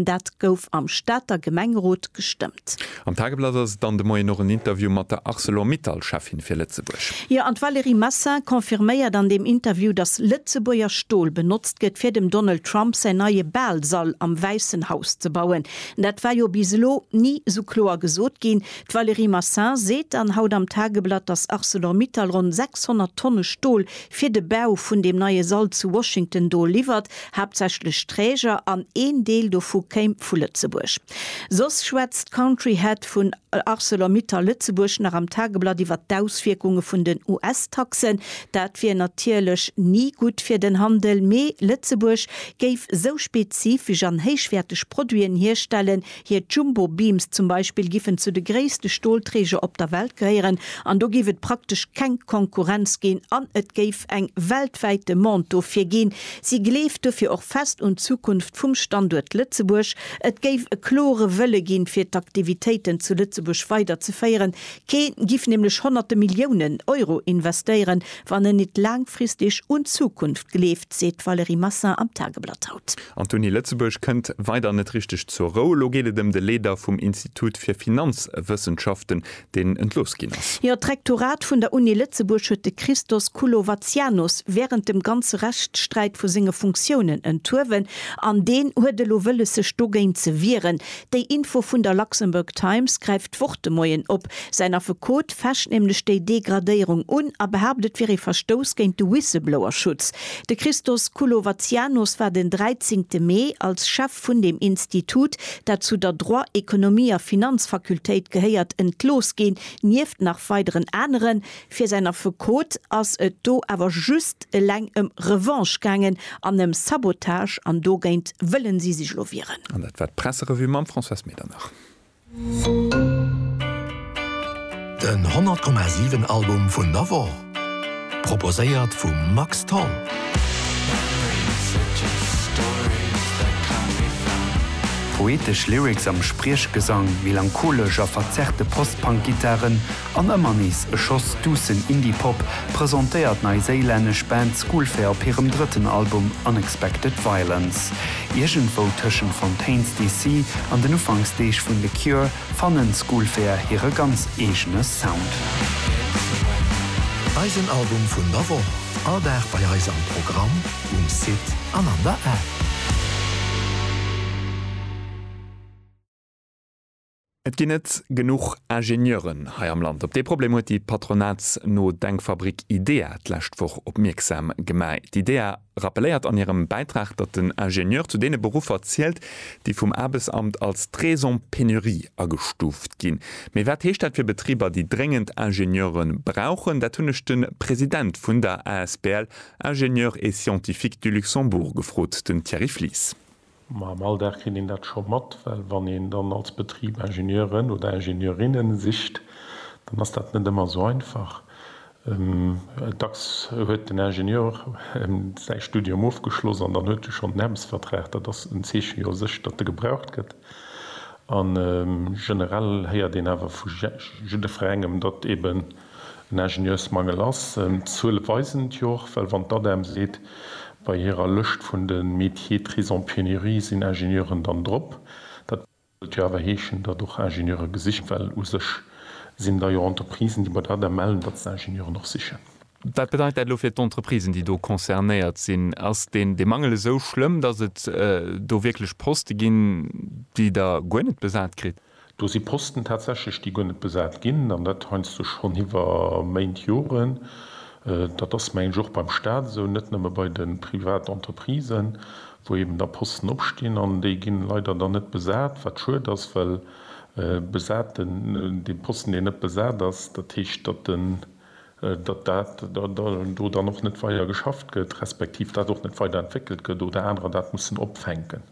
Dat gouf am Stater Gemengerot gestëmmt. Am Tageblatt ass et dann de Moien och en Interview mat der Arcelor-Mittal-Cheffin fir Lëtzebuerg. Jo, an d'Valérie Massin confirméiert an deem Interview, datt Lëtzebuerger Stol benotzt gëtt, fir dem Donald Trump säin neie Baalsall am Wäissen Haus ze bauen. Dat war jo bis elo ni esou kloer gesot ginn. D'Valérie Massin seet dann haut am Tageblatt, datt Arcelor-Mittal ronn 600 Tonne Stol fir de Bau vun deem neie Sall zu Washington do liwwert. haaptsächlech Träger, an een Deel dovu kéim vu Lëtzebuerg. Soss schwätzt d'Country Head vun Arcelor-Mittal Lëtzebuerg nach am Tageblatt iwwer d'Auswierkunge vun den US-Taxen. Dat wier natierlech ni gutt fir den Handel, mee Lëtzebuerg géif esou spezifesch an héichwäerteg Produiten hierstellen, Hir Jumbo Beams zum Beispill giffen zu de gréisste Stolträger op der Welt gehéieren an do géif et praktesch keng Konkurrenz ginn an et géif eng weltwäit Demande dofir ginn. Si gleeft dofir och fest un d'Zukunft vum Standuert Lëtzebuerg. Et géif e klore Wëlle ginn, fir d'Aktivitéiten zu Lëtzebuerg weider ze féieren. Kee giff nämlech honnerte Milliounen Euro investéieren, wann en nit laangfristig un d'Zukunft gleeft, seet d'Valérie Massin am Tageblatt haut. An d'Uni Lëtzebuerg kënnt weider net richteg zur Rou. Elo geet et ëm de Leeder vum Institut fir Finanzwëssenschaften, deen entlooss ginn ass. Jo, d'Rektorat vun der Uni Lëtzebuerg huet de Christos Koulovatsianos wärend dem ganze Rechtssträit vu senge Funktiounen enthuewen an deen huet elo wëlles sech dogéint ze wieren. Déi Info vun der Luxembourg Times gräift. D'Wort de Moien op. Säin Affekot fecht nämlech déi Degradéierung un a behaapt, et wier ee Verstouss géint de Whistleblower-Schutz. De Christos Koulovatsianos war den 13 Mee als Chef vun deem Institut, dat zu der Droit, Ekonomie a Finanzfakultéit gehéiert, entlooss ginn, nieft nach weideren aneren. Fir säin Affekot ass et do awer just eleng ëm Revanche gaangen an ëm Sabotage an dogéint wëllen si sech lo wieren. An dat war d'Presserevue mam Françoise Medernach. Den 100,7 Album vun der Woch, proposéiert vum Max Tholl. Poetesch Lyrics am Spriechgesang, melancholesch a verzerrte Post-Punk-Gittaren An ëmmer nees e Schoss duussen Indie-Pop presentéiert d'neiséilännesch Band Schoolfair op hirem drëtten Album Unexpected Violence. Iergendwou tëschent Fontaines DC. an den Ufanksdeeg vun The Cure fannen Schoolfair hire ganz eegene Sound. Eisen Album vun der Woch, all Dag bei eis am Programm, um Site an an der App. Et ginn net genuch Ingenieuren hei am Land. Op dee Problem huet déi patronatsno Denkfabrik IDEA d'lescht Woch opmierksam gemaach. D'IDEA rappelléiert an hirem Bäitrag, datt den Ingenieur zu deene Beruffer zielt, déi vum Aarbechtsamt als d'raison pénurie agestuuft ginn. Mee wat heescht dat fir Betriber, déi dréngend Ingenieure brauchen? Dat hunn ech de President vun der asbl Ingénieurs et scientifiques du Luxembourg gefrot, den Thierry Flies. Ma am Alldag kritt een dat scho mat, well wann een dann als Betrib Ingenieuren oder Ingenieurinnen sicht, dann ass dat net ëmmer esou einfach. Dacks huet den Ingenieur säi Studium ofgeschloss an dann huet e schonn en Aarbechtsvertrag. Dat ass en Zeeche jo u sech, datt e gebraucht gëtt. A generell héiert een awer vu jidderengem, datt eeben En Ingenieursmangel ass en, d'Zuele weisen et jo och, well wann d'ADEM seet, bei hirer Lëscht vun de Métiers pris en pénurie sinn Ingenieuren dann drop, dat wëllt jo awer heeschen, datt och Ingenieure gesicht ginn, well u sech sinn da jo Entreprisen, déi bei der ADEM mellen, datt se Ingenieuren och sichen. Wat bedeit dat elo fir d'Entreprisen, déi do concernéiert sinn? Ass deen dee Mangel esou schlëmm, datt et do wierklech Poste ginn, déi Der guer net besat kritt? Do si Posten tatsächlech, déi guer net besat ginn, an dat heiansdo schonn iwwer Méint, Joren. Dat ass, mengen ech, och beim Stat esou, net nëmme bei de Privatentreprisën, wou eben da Posten opstinn an déi ginn leider dann net besat, wat schued ass, well besaten, dee Posten, deen net besat ass, dat heescht, datt en, datt dat do dann och net weider geschafft gëtt, respektiv dat och net weider entwéckelt gëtt oder anerer dat mussen opfänken.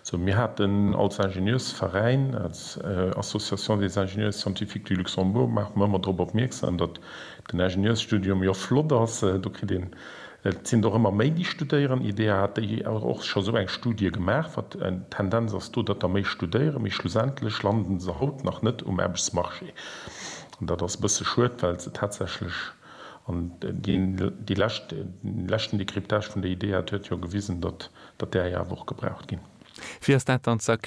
Sou, mir haten als Ingenieursveräin, als Association des ingénieurs scientifiques du Luxembourg, maache mer ëmmer drop opmierksam, datt den Ingenieursstudium jo flott ass, do kritt een, et sinn der och ëmmer méi déi studéieren, IDEA hat déi och scho sou eng Studie gemaach, wat d'Tendenz ass do, datt der méi studéieren, mee schlussendlech landen se haut nach net um Aarbechtsmarché. Dat ass e bësse schued, well se tatsächlech, an dee leschten Décryptage vun der Idee hat jo gewisen, datt där jo awer och gebraucht ginn. Wéi ass dat dann ze erklären?